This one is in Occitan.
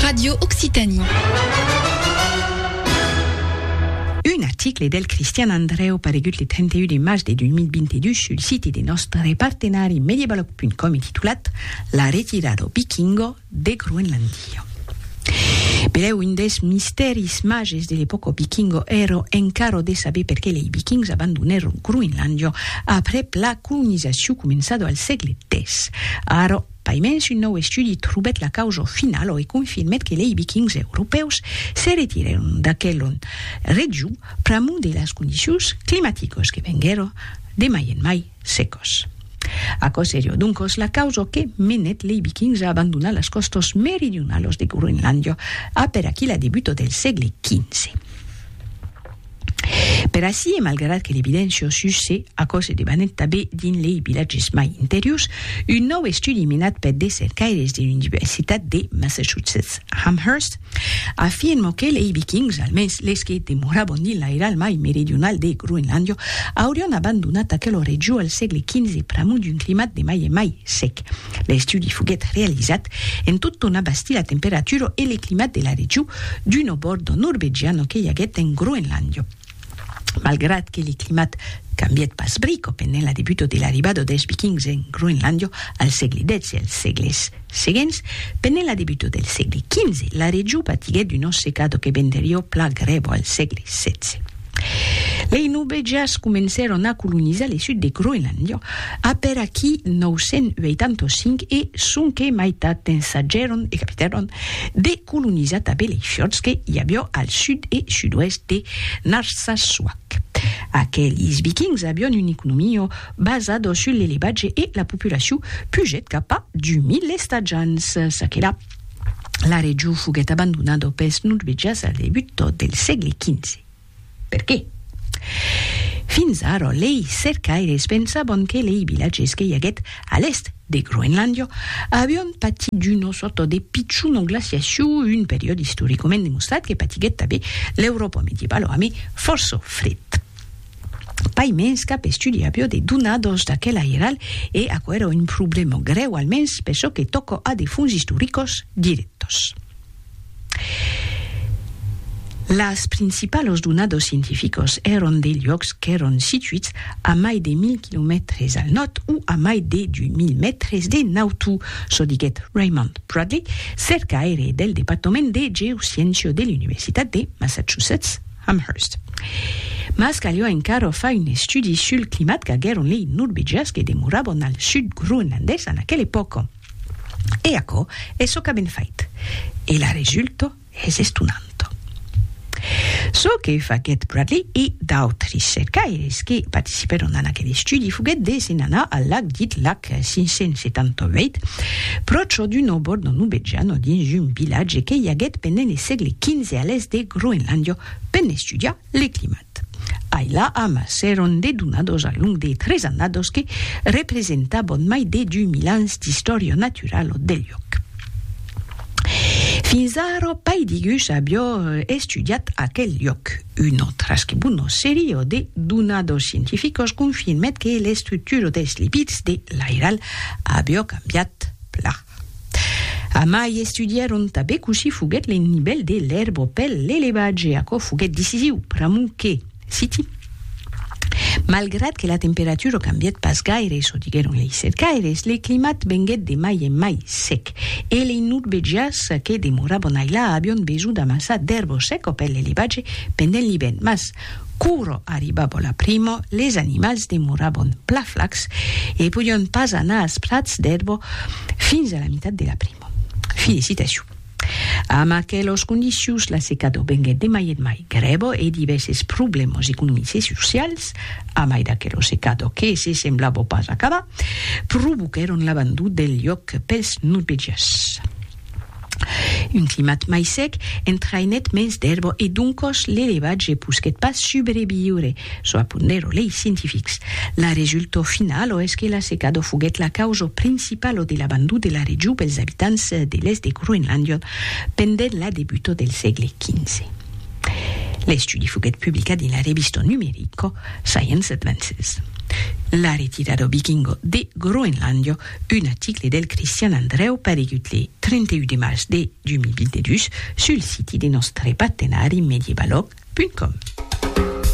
Radio Occitanie. Un article del Cristian Andrèu paregut le 31 de març de 2022 sul site de nòstre partenari Mediebalog.com e titulat La retirada vikingo de Groenlandia. Benlèu un dels mistèris màges de l'epòca vikingo èra encara de saber perqué lei vikings abandonèron Groenlandia aprèp la colonizacion començada al sègle X. Ara, Paimens un nòu estudi trobèt la causa finala e confirmèt que lei Vikings europèus se retirèron d'aquela region pr'amor de las condicions climaticas que venguèron de mai en mai secas. Aquò seriá doncas la causa que menèt lei Vikings a abandonar las còstas meridionalas de Groenlàndia, a per aquela debuta del sègle xv. Per ací, e malgrat que l'evidéncia o sus se, aquò se debanèt tabé dins lei vilatges mai interiors, un nòu estudi menat per de cercaires de l'Universitat de Massachusetts Amherst afirmò que lei Vikings, almens les que demorabon dins l'airal mai meridional de Groenlàndia, aurion abandonat aquela region al sègle XV pr'amor d'un climat de mai en mai sec. L'estudi foguèt realizat en tot tornar bastir la temperatura e le climat de la region d'un obòrdo norvegiano que i aguèt en Groenlàndia. Malgrat que le climat cambièt pas brico pendent la debuta de l'arribada dels Vikings en Groenlàndia al sègle xii e als sègles seguents, pendent la debuta del sègle xv, la region patiguèt una secada que venderiá pla grèva al sègle xvi. Lei Nubèjas comencèron a colonizar le sud de Groenlàndia apèr aquí 985 e sonque maitat ensajèron e capitèron de colonizar tanben lei fiords que i avió al sud e sud-oèst de Narsarsuaq. Aquelis Vikings avión un economio basado sul l'elevatge e la populacion pugèt cap a 2000 estatjants. Çaquelà. La region foguèt abandonada pels norvegians al debut del sègle XV. Per qué? Fins ara, lei cercaires pensavan que lei vilatges que i aguèt a l'èst de Groenlàndia avián patit d'una sòrta de pichona glaciacion, un periòde istoricament demostrat que patiguèt tanben l'Euròpa medievala amé fòrça fred. Pas mens cap estudi avió de donadors d'aquel airalh e aquò èra un problèma grèu almens per çò que tòca a de fons istoricos dirèctos. Las principalos donadors scientificos èran de luòcs qu'èran situits a mai de 1000 quilomètres al nòrd o a mai de 2000 mètres de nautu, çò diguèt Raymond Bradley, cercaire del Departament de Geosciéncia de l'Universitat de Massachusetts. Amherst. Mas calhó encara far un estudi sul climat qu'aguèron lei norvegians que demorabon al sud groenlandés en aquela epòca. E aquò es çò qu'avèn fait. E la resulta es estonanta. Çò que faguèt Bradley e d'autres cercaires que participèron en aquel estudi foguèt de se'n anar al lac dit lac. 578, pròche d'un òbor de Nubedjano dins un vilatge que i aguèt pendent le sègle XV a l'èst de Groenlàndia per n'estudiar le climat. Ai la amassèron de donados al long de tres annados que representaban mai de 2000 ans d'istòria naturala del luòc. Fins ara, pai digus avió estudiat aquel lloc. Un autre que bon nos serio de donar dos scientificos confirmet que l'estructura des lipids de l'airal avió cambiat plan. Amai estudièron tanben cossí foguèt le nivèl de l'èrba pel l'elevatge, aquò foguèt decisiu pr'amor que, Citi. Malgrat que la temperatura cambièt pas gaire, çò diguèron lei cercaires, le climat venguèt de mai en mai sec e lei nurvegias que demorabon ailà avion besonh d'amassar d'èrbo seco per l'elevatge pendent l'ivèrn. Mas, quora arribava la primo, les animals demorabon pla flacs e podion pas anar as prats d'èrbo fins a la mitat de la primo. Fi de citacion. Amb aquelos condicions, la secado venguèt de mai en mai grèva e divèrses problèmas economics e socials, a mai d'aquela secada que se semblava pas acabar, provoquèron l'abandon del lhòc pels norvegians. Un climat mai sec entraïnèt mens d'èrva e doncas l'elevatge posquèt pas subreviure. Çò apondèro lei scientifics. La resultau finalo es que la secado foguèt la causa principalo de l'abandon de la region pels abitants de l'èst de Groenlàndia pendent la debuta del sègle XV. L'estudi foguèt publicat dins la revista numerica Science Advances. La retirada vikinga de Groenlàndia, un article del Cristian Andrèu paregut le 31 de març de 2022 sul siti de nòstre partenari medievalog.com.